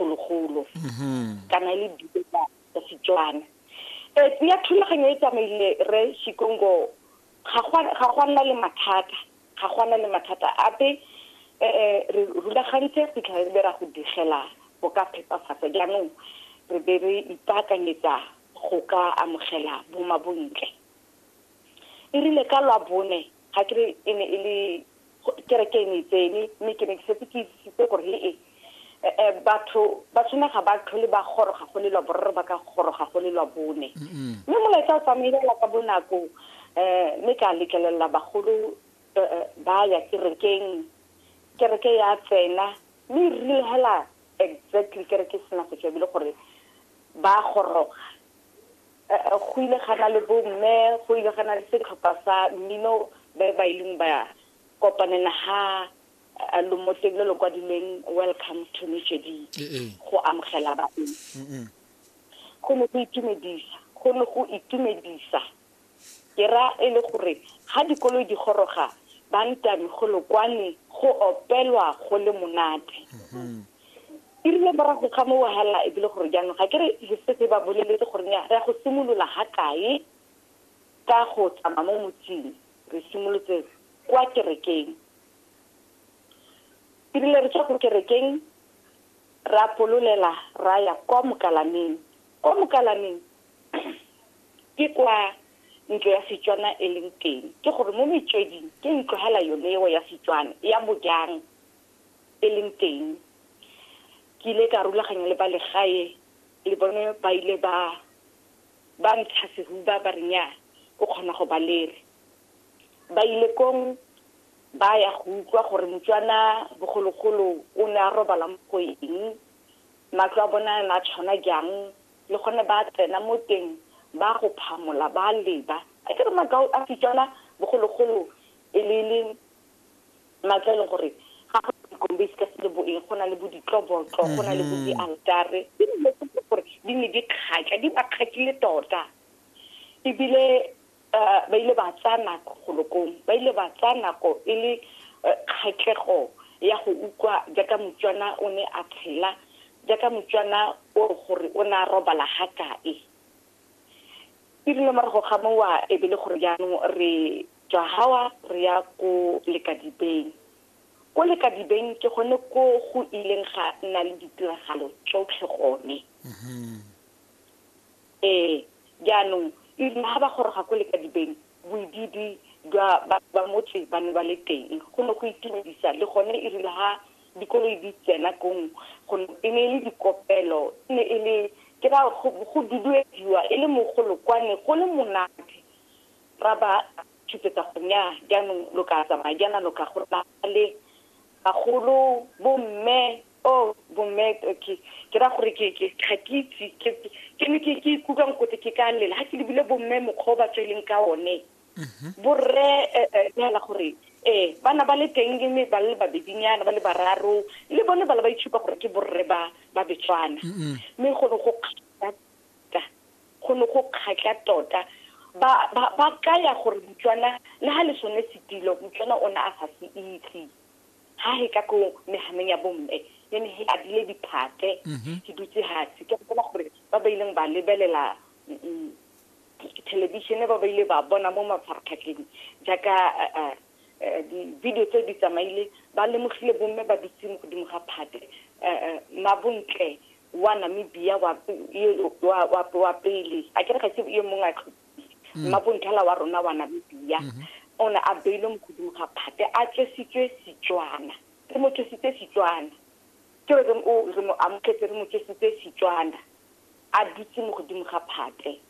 bogologolo kana e le dibe tsa Setswana. Eh, ya thulaganyo e tsamaile re Shikongo ga go nna le mathata ga go nna le mathata ape eh, eh re rulagantse fitlha re be ra go digela go ka phepafatsa jaanong re be re ipaakanyetsa go ka amogela bomabontle e rile ka lwa bone ga ke re e ne e le Kereke e ne e tsene, mme ke ne ke setse ke itsisitse gore he-e um batho ba tshwane ga ba tlhole ba goroga go le lwa boraro ba ka goroga go le lwa bone mme molaetsa o tsamaelela ka bonako um mme ka letlelelela bagolo um ba ya kerekeng kereke ya tsena mme e rile hela exactly kereke e sena go tswa ebile gore ba goroga go ile ga na le bomme go ile ga na le setlhopha sa mmino ba ba ileng ba kopanela ha lomoteng le le kwadileng welcome to mejedi go amogela baeng go ne go itumedisa go ne go itumedisa Ke ra e le gore ga dikoloi di goroga ba ntami golo kwane go opelwa go le monate. E rile morago ga mo wahala e bile gore jaanong ga ke re re setse ba boleletse gore nya re ya go simolola ga kae ka go tsamaya mo motsing re simolotse kwa kerekeng. E rile re tswa ko kerekeng ra pololela ra ya kwa mokalameng. Kwa mokalameng ke kwa ntlo ya setswana e leng teng ke gore mo metsweding ke ntlo hela yone eo ya setswana ya bojang e leng teng ke ile ka rulaganya le ba legae le bone ba ile ba ba ntsha sehuba ba re nya o kgona go ba lere ba ile kong ba ya go utlwa gore motswana bogologolo o ne a robala mo go eng matlo a bona a tshwana jang le gone ba tsena mo teng ba go phamola ba leba a ke re makao a setswana bogologolo e le le matla e leng gore ga go dikombe se ka se le boeng go na le bo ditlobotlo go na le bo dialtare ke dilo tse gore di ne di kgatla di ba kgatlile tota ebile Uh, ba ile ba tsaya nako golokong ba ile ba tsaya nako e le uh, kgatlhego ya go utlwa jaaka motswana o ne a tshela jaaka motswana o gore o ne a robala ga kae e rile morago ga mowa e be le gore jaanong re tswa gawa re ya ko lekadibeng ko lekadibeng ke gone ko go ileng ga nna le ditiragalo tsotlhe gone mm-hmm. Ee, jaanong e rile ga ba goroga ko lekadibeng, boidiidi jwa batho ba motse ba ne ba le teng. Go ne go itumedisa, le gone e rile ga dikoloi di tsena kong, e ne e le dikopelo, e ne e le ke ra go duduediwa e le mogolo kwa, ne go le monate. Ra ba tshupetsa gore nnyaa, jaanong lo ka tsamaya jaana, lo ka go nna le bagolo, bomme, oh bomme ke ke ra gore ke ke ga ke itse ke ke ne ke ke ikutlwang kote ke ka lela ga ke lebile bomme mokgwa o ba tsweleng ka one mhm. borre eh, eh, neela gore ee bana ba le teng le me ba le babedinyana ba le bararo le bone ba le ba itshupa gore ke borre ba ba betswana mme go ne go kgatla tota, go ne go kgatla tota ba ba ba kaya gore motswana le ha le sone setilo motswana o ne a sa se itse ha he ka ko mehanong ya bomme e ne he adile diphate mhm. ke dutse hatsi ke gopola gore ba ba ileng ba lebelela mm, mm, thelebišene ba ba ile ba bona mo mafaratlhatlheng jaaka eh, eh, eh, di-video tse di tsamaile ba lemogile bomme ba dutse mo godimo ga phate mabontle wa namibia wa pele a kere ga se yo mongwe a tlhopile mm. mmabonthala wa rona wa namibia mm-hmm. o ne a beilwe mo godimo ga phate a tswesitswe setswana re mo tswesitse setswana ke re re mo amogetse re mo tswesitse setswana a dutse mo godimo ga phate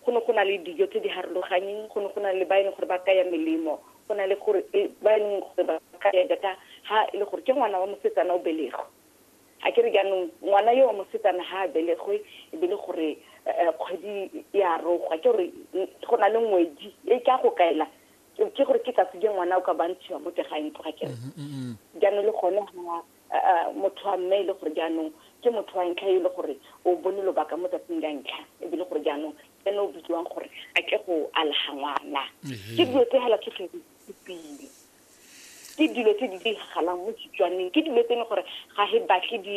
go ne go na le dijo tse di harologanyeng go ne go na le ba e leng gore ba kaya melemo go na le gore e, ba e leng gore ba kaya data ha e le gore ke ngwana wa mosetsana o belego A ke re jaanong ngwana yo wa mosetsana ga a belegwe e be le gore kgwedi e a rogwa, ke gore go na le ngwedi e ka go kaela ke gore ke tsatsi je ngwana o ka bantshiwa mo tega ntlo ga kere jaanong le gone ga motho wa mme e le gore jaanong ke motho wa ntlha e le gore o bone lobaka mo tsatsing la ntlha e be le gore jaanong ene o bidiwang gore a ke go alaga ngwana ke dilo tse hela tsotlhe di supile ke dilo tse di diragalang mo Setswaneng ke dilo tse e leng gore ga re batle di